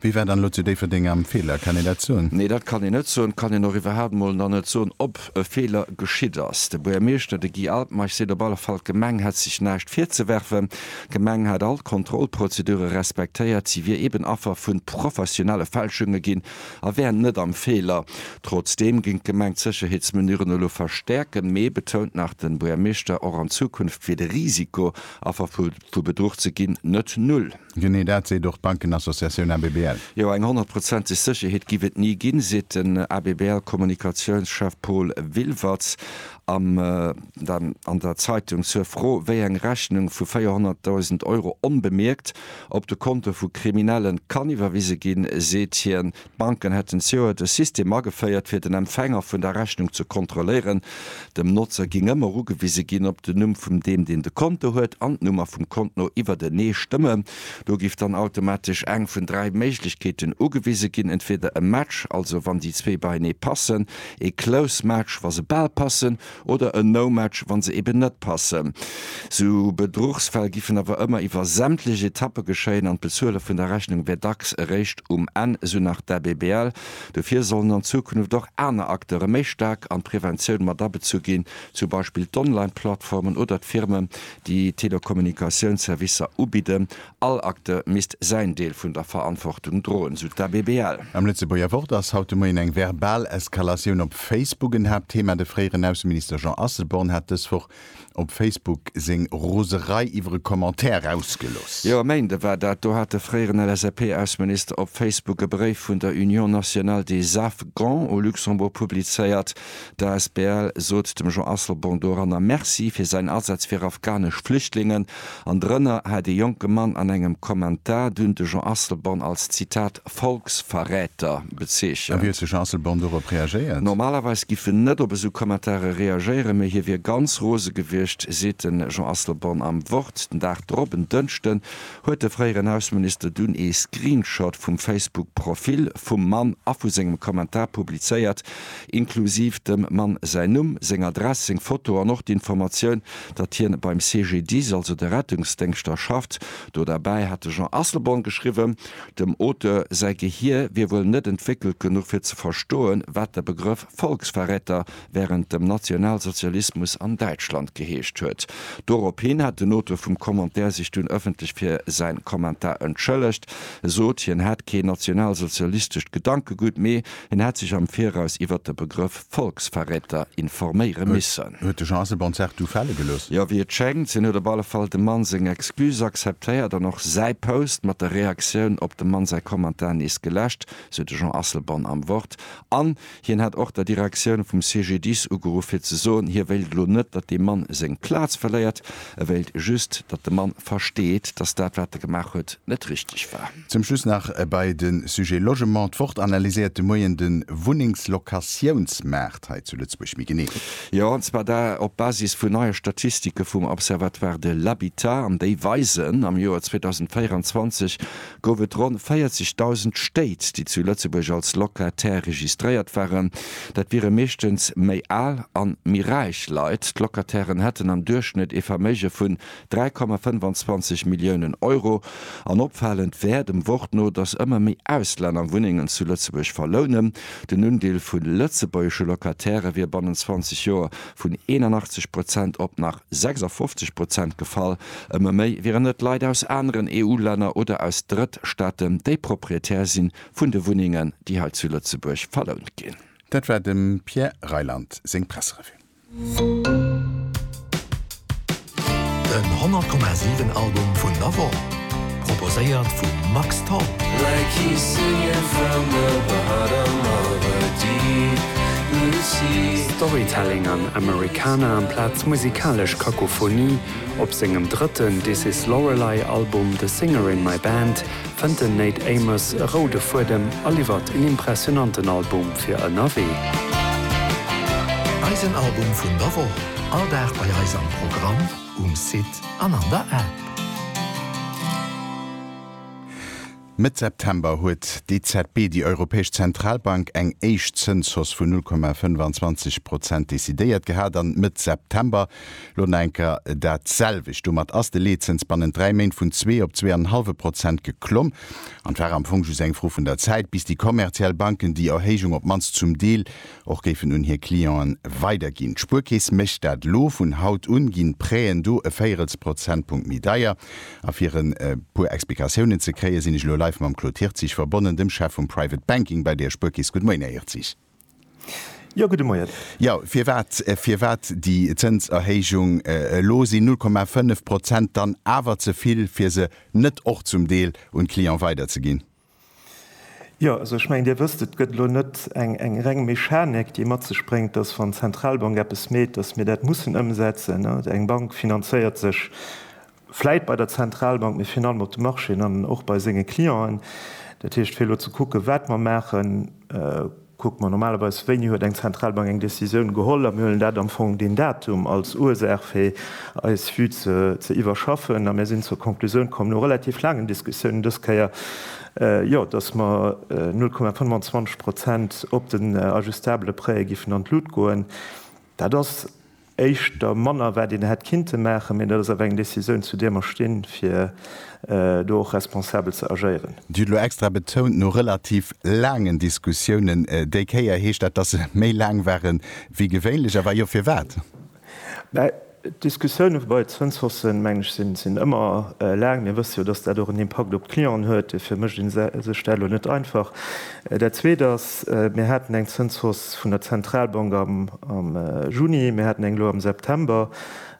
Wéi war dann elo zu Déifferdeng am Feeler? Kann een dat soen? Nee, dat kann een net soen. Kann een och iwwerhaapt mol nach net soen, ob e Feeler geschitt ass. De Buergermeeschter, de Guy Altmeich, seet op alle Fall, d'Gemeng hätt sech näischt virzewerfen. D'Gemeng hätt all d'Kontrollprozedure respektéiert. Si wier eben Affer vu professionelle Fälschunge ginn a wär net am Feeler. Trotzdeem géing d'Gemeng d'Sécherheetsmenuren elo verstäerken. Mee, betount nach de Buergermeeschter, och an Zukunft wier de Risiko, Affer vu Bedruch ze ginn, net null. Genee dat seet och d'Bankenassociatioun ABBL. Jo, eng honnertprozenteg Sécherheet giff et ni ginn, seet den ABBL-Kommunikatiounschef Paul Wilwertz am dann an der Zeitung. Zur Fro, wéi eng Rechnung vu 400.000 Euro onbemierkt op de Konto vu Kriminellen kann iwwerwise ginn, seet hien, D'Banken hätten zioert e System ageféiert, fir den Empfänger vun der Rechnung ze kontrolléieren. Dem Notzer ging ëmmer ugewise ginn, ob den Numm vum deem, deen de Konto huet, an d'Nummer vum Kont no iwwertenee stëmmen. Do giff dann automatesch eng vun dräi Méiglechkeeten ugewise ginn, entweder e Match, also wann déi zwee beienee passen, e Close Match, wa se bal passen, oder en No-Match, wann se eben net passen. Sou Bedruchsfäll giffen awer ëmmer iwwer sämtlech Etappe geschéien an d'Bezuele vun der Rechnung wär dacks eréischt um Enn, sou nach d'ABBL. Dofir sollen an Zukunft och aner Acteure méi staark an d'Preventioun matabezu ginn, zum Beispill d'Online-Plattformen oder d'Firmen, déi Telekommunikatiounsservicer ubidden All Acteur misst säin Deel vun der Verantwortung droen, sou d'ABBL. Am Lëtzebuerger Wort ass haut de Moien eng verbal Eskalatioun op Facebook en Haapttheema. De fréieren Ausseminister Jean Asselborn hat dës Woch op Facebook seng Roserei iwwer e Commentaire erausgelooss. Jo, e Méinde war dat, do hat de fréieren LSAP-Ausseminister op Facebook e Bréif vun der Union nationale des afghans au Luxembourg publizéiert. D'asbl sot dem Jean Asselborn doranner Merci fir säin Asaz fir afghanesch Flüchtlingen, an drënner hat ee jonke Mann an engem Kommentar dunn de Jean Asselborn als, Zitat, Volksverräter bezeechent. A wéi huet de Jean Asselborn dorop reagéiert? Normalerweis giff en net op esou Kommentare reagéieren, mee hie wier ganz rose gewiescht, seet de Jean Asselborn am Wort. Den Dag drop, en Dënschden, huet de fréieren Ausseminister dunn ee Screenshot vum Facebook-Profil vum Mann a vu sengem Kommentar publizéiert, inklusiv dem Mann säin Numm, seng Adress, seng Foto an och d'Informatioun, datt hien beim CGDIS, also de Rettungsdéngschter, schafft. Do derbäi hat de Jean Asselborn geschriwwen, dem Auteur säi Gehier wier wuel net entwéckelt genuch fir ze verstoen, wat de Begrëff Volksverräter wärend dem Nationalsozialismus an Däitschland geheescht huet. Dorophin hat den Auteur vum Commentaire sech dunn ëffentlech fir säin Kommentar entschëllegt, sot, hien hätt keen nationalsozialistescht Gedankegutt, mee Hien hätt sech am Viraus iwwert de Begrëff Volksverräter informéiere missen. Huet de Jean Asselborn d'Saach du fale gelooss? Jo, wéi et schéngt. Hien huet op alle Fall dem Mann seng Excuse akzeptéiert an och säi Post mat der Reaktioun op dem Mann säi Kommentar nees geläscht, sou de Jean Asselborn am Wort. An hien hätt och der Direktioun vum CGDIS ugeruff fir ze soen, hie wéilt elo net, datt dee Mann seng Plaz verléiert. E wéilt just, datt de Mann versteet, datt dat wat e gemaach huet, net richteg war. Zum Schluss nach bei de Sujet Logement. D'Wort analyséiert de Moien de Wunnengslokatiounsmaart hei zu Lëtzebuerg méi genee. Jo, an zwar da op Basis vun neie Statistike vum Observatoire de l'habitat. An déi weisen, am Joer 2024 gouf et ronn 40.000 Stéit, déi zu Lëtzebuerg als Locataire registréiert waren. Dat wiere meeschtens méi al an méi räich Leit. D'Locatairen hätten am Duerchschnëtt ee Verméige vun 3,25 Milliounen Euro. An opfalend wär dem Wort no, datt ëmmer méi Auslänner Wunnengen zu Lëtzebuerg verlounen. Den Undeel vu lëtzebuergesche Locataire wier bannent 20 Joer vun 81 Prozent op nach 56 Prozent gefall. Ëmmer méi wieren et Leit aus aneren EU-Länner oder aus Drëttstaaten, déi Proprietär si vun de Wunnengen, déi hei zu Lëtzebuerg verlount ginn. Dat war dem Pierre Reyland seng Presserevue. Den 100,7 Album vun der Woch, proposéiert vum Max Tholl. Like you singing from the bottom of a deep blue sea. Storytelling an Americana amplaz musikalesch Kakophonie. Op sengem drëtten This Is Lorelei Album The Singer In My Band fënnt den Nate Amos e roude Fuedem a liwwert en impressionanten Album fir ënnerwee. Eisen Album vun der Woch, all Dag bei eis am Programm, um Site an an der App. Mëtt September huet d'EZB, déi Europäesch Zentralbank, eng éischt Zënshausse vun 0,25 Prozent decidéiert gehat an Mëtt September Lonenker dat selwecht. Domat ass de Leetzëns bannent dräi Méint vun zwee op zwee an en hallwe Prozent geklomm. An et war am Fong just eng Fro vun der Zäit, bis déi kommerziell Banken déi Erhéijung op d'mannst zum Deel och géifen un hir Clienten weiderginn. D'Spuerkeess mécht dat elo. Vun haut un ginn d'Prêten do e Véierelsprozentpunkt méi deier. A fir e puer Explikatiounen ze kréien, sinn ech elo live mam Claude Hirtzig verbonnen, dem Chef vum Private Banking bei der Spuerkeess. Good Moien, Här Hirtzig. Jo, gudde Moien. Jo, firwat, firwat déi Zënserhéijung elo? Sinn 0,5 Prozent dann awer ze vill, fir se net och zum Deel un d'Clienten weiderzeginn? Jo, also ech mengen, Dir wësst, et gëtt elo net eng reng Mechanik, déi mat sech bréngt, dass, wann d'Zentralbank eppes meet, dass mir dat mussen ëmsetzen. Eng Bank finanzéiert sech vläit bei der Zentralbank, mee virun allem op de Marchéen an och bei senge Clienten. Dat heescht, fir elo ze kucken, wat mer maachen, kucke mer normalerweis, wéini huet eng Zentralbank eng Décisioun geholl, a mir huelen dat am Fong deen Datum als Ursaach, fir eis Vue ze iwwerschaffen. A mir sinn zur Konklusioun komm, no relativ laangen Diskussiounen dës Kéier, jo, datt mer 0,25 Prozent op den ajustabele Prêtë géifen an d'Lut goen. Dat ass. éischter manner wat een hätt kinnte maachen, mee dat ass awer eng Décisioun zu där mer stinn, fir do och responsabel ze agéieren. Dir hutt elo extra betount, no relativ laangen Diskussiounen. Déi Kéier heescht dat, datt se méi laang ware wéi gewéinlech, a wa jo, firwat? Mä d'Diskussioune bei d'Zënshausssen, mengen ech, sinn ëmmer laang. Mir wësse jo, datt dat och en Impakt op d'Clienten huet. Dofir mécht ee sech dat elo net einfach. Dat Zweet ass, mir haten eng Zënshausse vun der Zentralbank am Juni, mir haten eng elo am September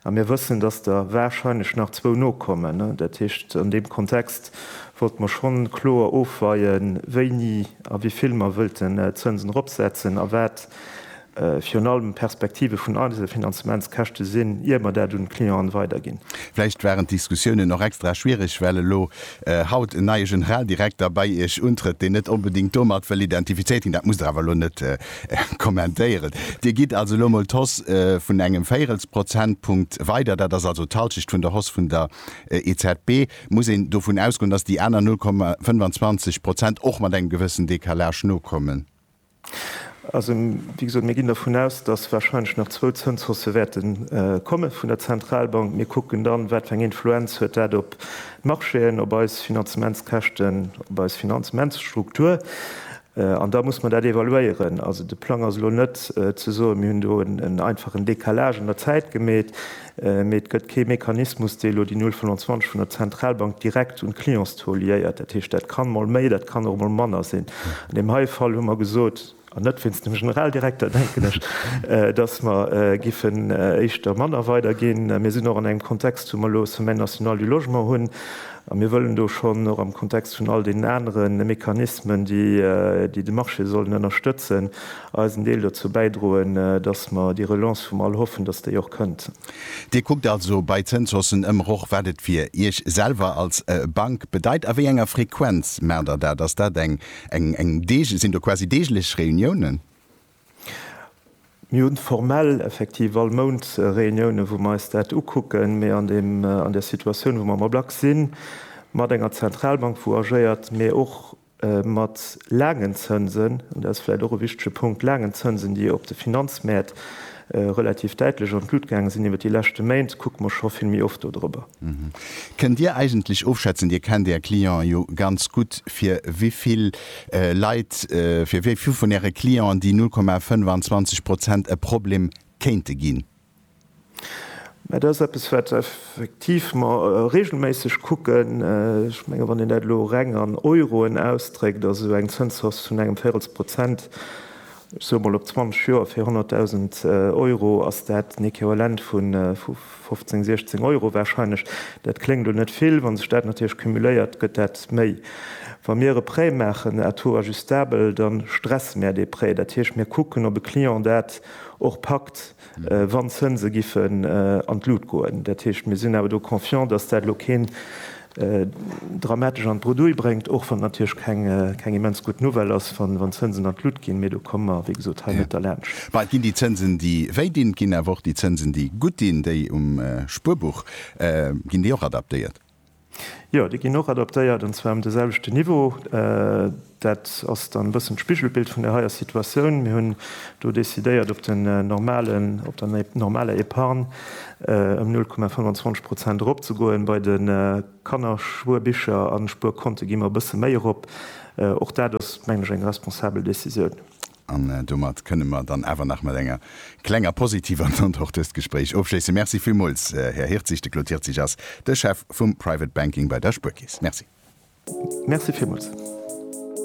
a mir wëssen, dass der wahrscheinlech nach zwou nokommen. Dat heescht, an deem Kontext wollte mer schonn kloer ofweien, wéini a wéi vill mer wëllten d'Zënsen eropsetzen a wat virun allem d'Perspektive vun Einzelfinanzementskäschte sinn, ier mer dat un d'Clienten weiderginn. Vläicht waren d'Diskussiounen och extra schwierig, well elo haut en neie Generaldirekter bei Iech untrëtt, deen net onbedéngt domat wëll identifizéiert ginn. Dat musst Der awer elo net kommentéieren. Dir gitt also elo emol d'Hausse vun engem Véierelsprozentpunkt weider. Dat ass also d'Halschecht vun der Hausse vun der EZB. Muss een dovun ausgoen, dass déi aner 0,25 Prozent och mat engem gewëssen Décalage nokommen? Also, wéi gesot, mir ginn dervun aus, datt warscheinlech nach zwou Zënshaussë wäerte komme vun der Zentralbank. Mir kucken dann, wat fir eng Influenz huet dat op d'Marchéen, op eis Finanzementskäschten, op eis Finanzementsstruktur. An da muss mer dat evaluéieren. Also de Plang ass elo net ze soen, mir hunn do en einfachen Décalage an der Zäit gemeet. Mee et gëtt kee Mechanismus, dee elo déi 0,25 vun der Zentralbank direkt un d'Clientstaux liéiert. Dat heescht, dat kann mol méi, dat kann och mol manner sinn. An deem heie Fall hu mer gesot, an net wéinst dem Generaldirekter, denken ech, dass mer giffen éischter manner weiderginn. Mir sinn och an engem Kontext, wou mer elo e Semaine nationale du logement hunn. A mir wëllen do schonn och am Kontext vun all deenen anere Mechanismen, déi de Marché sollen ënnerstëtzen, eisen Deel dozou bäidroen, dass mer déi Relance, wou mer all hoffen, dass déi och kënnt. Dir kuckt also bei Zënshaussen ëmmer och, wat et fir Iech selwer als Bank bedeit. A wéi enger Frequenz maacht Der dat? Ass dat eng, eng, deeg-, sinn do quasi deeglech Reuniounen? Mir hunn formell effektiv all Mount Reuniounen, wou mer eis dat ukucken, mee an deem, an där Situatioun, wou mer am Ablack sinn, mat enger Zentralbank, wou agéiert, mee och mat laangen Zënsen, an dat ass vläicht och e wichtege Punkt, laangen Zënsen, déi op de Finanzmäert relativ däitlech an d'Lut gaange sinn iwwert déi leschte Méint, kucke mer scho vill méi oft do drëber. Kënnt Dir eigentlech ofschätzen, Dir kennt Är Clienten jo ganz gutt, fir wéi vill Leit, fir wéi vill vun Äre Clienten déi 0,25 Prozent e Problem kéinte ginn? Mä dat ass eppes, wat effektiv mer reegelméisseg kucken. Ech menge wann een dat elo reng an Euroen ausdréckt, ass esou eng Zënshausse vun engem Véirels Prozent, ech soe mol op 20 Joer fir 100.000 Euro, ass dat en Equivalent vu 15, 16 Euro warscheinlech. Dat kléngt elo net vill, wa sech dat natierlech cumuléiert, gëtt dat méi. Wa mir e Prêt maachen à taux ajustabel, da stresse mir dee Prêt. Dat heescht, mir kucken, ob e Client dat och packt. wann d'Zënse giffen an d'Lut goen. Dat heescht, mir sinn awer do confiant, dass dat elo keen dramatesch an d'Bredouille bréngt, och wann et natierlech keng immens gutt Nouvelle ass, wann d'Zënsen an d'Lut ginn, mee do komme mer, wéi gesot, hei net derlaanscht. Mä et ginn déi Zënsen, déi wéi dinn, et ginn awer och déi Zënsen, déi gutt dinn, déi um Spuerbuch, ginn déi och adaptéiert? Jo, déi ginn och adaptéiert, an zwar um de selwechten Niveau. Dat ass dann e bëssen d'Spigelbild vun der heier Situatioun. Mir hunn do decidéiert, op den normalen, op der normaler Epargne ëm 0,25 Prozent eropzegoen. Bei de Kannerspuerbicher a Spuerkonte gi mer e bësse méi erop. Och dat ass, mengen ech, eng responsabel Decisioun. An domat kënnen mer dann awer nach mat enger klenger positiver Note och dëst Gespréich ofschléissen. Merci villmools, Här Hirtzig. De Claude Hirtzig ass de Chef vum Private Banking bei der Spuerkeess. Merci. Merci villmools.